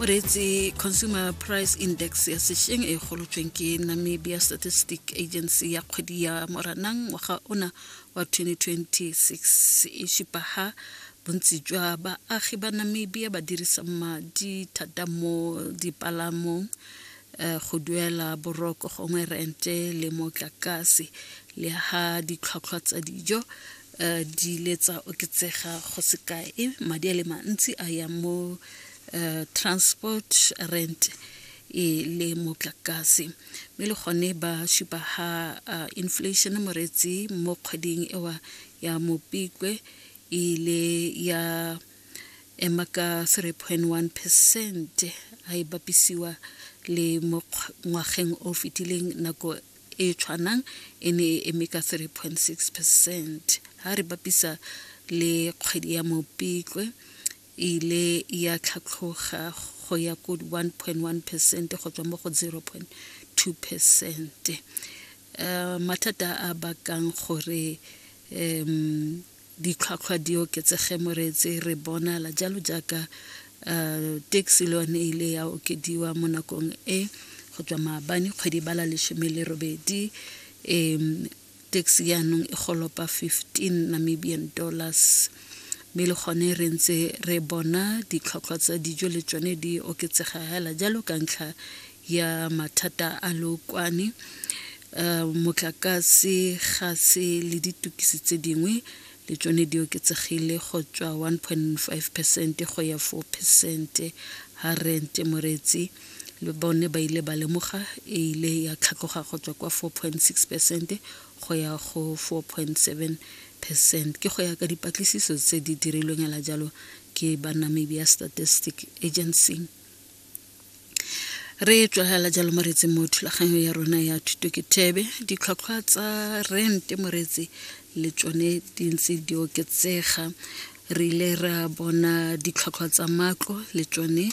moreetsi consumer price index ya sešeng e golotsweng ke namibia statistic agency ya kgwedi ya moranang ngwaga ona wa 2026 e šipa ha bontsi jwa baagi ba namibia ba dirisa madi thata mo dipalamong eh, go duela boroko gongwe rente le motlakase le ha ditlhwatlhwa tsa dijo eh, di ile tsa oketsega go sekae madi a le mantsi a ya mo uh, transport rent e le motlakase mme le gone ba supa ha uh, inflation moretsi mo kgweding ewa ya mopikwe e ile ya ema ka 3.1 percent a e bapisiwa le mo ngwageng o fetileng nako e tshwanang e ne e eme ka 3.6 percent ha re bapisa le kgwedi ya mopikwe e ile ya tlhatlhoga go ya ko 1.1 percent go tswa mo go 0.2 percent um mathata a bakang gore um ditlhwatlhwa di oketsege moreetse re bonala jalo jaaka um taxi le yone e ile ya okediwa mo nakong e go tswa maabane kgwedi bala lesome le robedi um Tax jaanong e golopa 15 Namibian dollars mme le gone re ntse re bona ditlhotlhwa tsa dijo le tsone di oketsega hela jalo ka ntlha ya mathata a lookwane Eh, motlakase gase le ditukisi tse dingwe le tsone di oketsegile go tswa 1.5 percent go ya 4 percent ha rente moretsi Le bone ba ile ba lemoga e ile ya tlhatloga go tswa kwa 4.6 percent go ya go 4.7 percent ke go ya ka dipatlisiso tse di dirilweng la jalo ke ba Namibia Statistic Agency. re tswagela jalo moretse mo thulaganyo ya rona ya thuto ke thebe ditlhwatlhwa tsa rent moretse le tsone di ntse di oketsega re ile ra bona ditlhwatlhwa tsa matlo le tsone